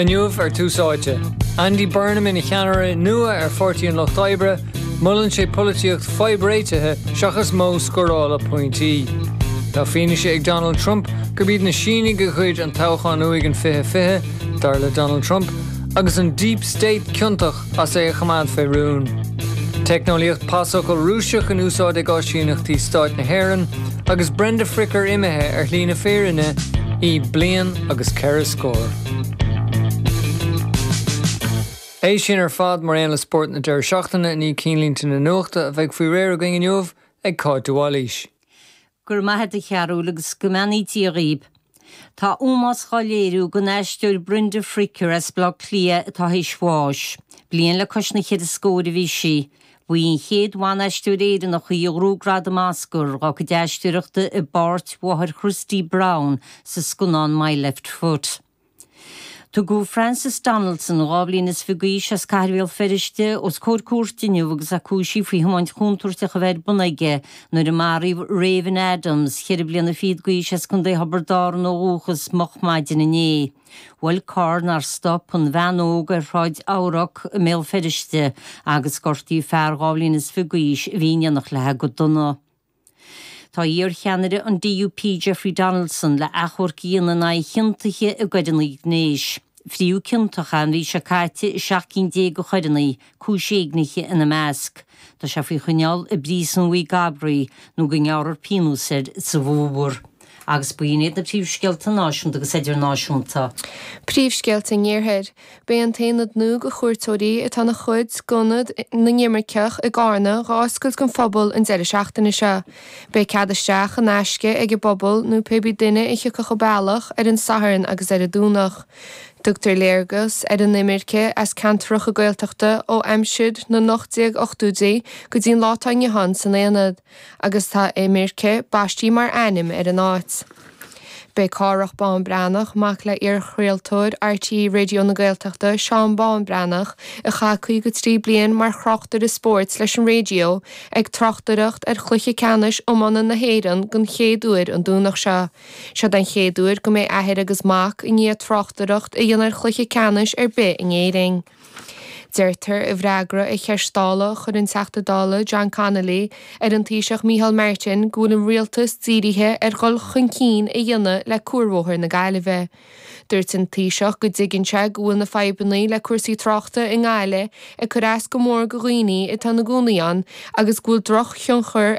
Inniu ar Tús Áite, Andy Burnham ina cheannaire nua ar Pháirtí an Lucht Oibre, molann sé polaitíocht fadhbréitithe seachas modh scórála pointí. Tá fianaise ag Donald Trump gurb iad na Sínigh a ghoid an toghchán uaidh in 2020, dar le Donald Trump, agus an 'deep state' ciontach as é a choimeád fé rún. Teicneolaíocht pasfhocal Rúiseach in úsáid ag áisíneachtaí stáit na hÉireann agus Brenda Fricker imithe ar shlí na fírinne í bliain agus ceithre scór. É sin ar fad mar aon le spórt na deireadh seachtaine i ndiaidh cinnlínte na nuachta a bheidh faoi réir agaibh inniu ag Cáit Uí Mhailís. Go raibh maith a't a Chearúil agus go mbeannaí Dia dhaoib. Tá ómós dhá léiriú don aisteoir Brenda Fricker as Baile Átha Cliath atá théis bháis. Bliain le cois na ceithre scóir a bhí sí. Ba í an chéad bhan-aisteoir Éireannach í a ghnóthaigh gradam Oscar dá cuid aisteoireachta i bpáirt mháthair Christy Brown sa scannán My Left Foot. Tugadh Francis Donaldson, dhá bhliain is fiche d'aois, as Cathair Bhéal Feirste, os comhair cúirte inniu agus é cúisithe faoi thiomáint chontúirteach a bheith ar bun aige nuair a maraíodh Raven Adams, ceithre bliana fichead d'aois as Co Thiobraid Árann ó dhúchas, moch maidin inné. Bhuail carr nár stop an bhean óg ar Shráid Eabhrac i mBéal Feirste agus gortaíodh fear dhá bhliain is fiche d'aois a bhí in éineacht leithe go dona. Tá iarcheannaire an DUP Jeffrey Donaldson le achomharc a dhéanamh in aghaidh a chiontaithe i gcoireanna gnéis, fritheadh ciontach é an mhí seo caite i seacht gcinn déag de choireanna, cúis éignithe ina measc. Tá sé faoi choinneáil i bPríosún Mhaigh gCabraí nó go ngearrfar pionós air sa bhfómhar. Agus b'in iad na príomhscéalta náisiúnta agus idirnáisiúnta. Príomhscéalta an Iarthair. Beidh an t-aonad nua do chuairteoirí atá ina chuid d'Ionad na nImirceach i gCarna dhá oscailt don phobal an deireadh seachtaine seo. Beidh cead isteach in aisce ag an bpobal nó pébí duine a thiocfadh a bealach ar an Satharn agus ar an Domhnach. Tugtar léargas ar an imirce as ceantaracha Gaeltachta ó aimsir na n-ocht déag ochtóidí go dtí'n lá atá inniu ann san aonad. Agus tá Imirce baistithe mar ainm ar an áit. Beidh Cárthach Bán Breathnach, mac le iarchraoltóir RTÉ Raidio na Gaeltachta, Seán Bán Breathnach, a chaith 53 bliain mar thráchtaire spóirt leis an Raidio, ag tráchtaireacht ar Chluiche Ceannais Iomána na hÉireann den chéad uair an Domhnach seo. Seod é an chéad uair go mbeidh athair agus mac i ndiaidh tráchtaireacht a dhéanamh ar chluiche ceannais ar bith in Éirinn. Deirtear i bhfreagra ar cheist Dála a chuir an Teachta Dála John Connolly ar an Taoiseach Micheál Martin go bhfuil an Rialtas dírithe ar dhul chun cinn a dhéanamh le cuarbhóthar na Gaillimhe. Dúirt an Taoiseach go dtuigeann sé go bhfuil na fadhbanna le cúrsaí tráchta i nGaillimh ag cur as go mór go dhaoine atá ina gcónaí ann agus go bhfuil drochthionchar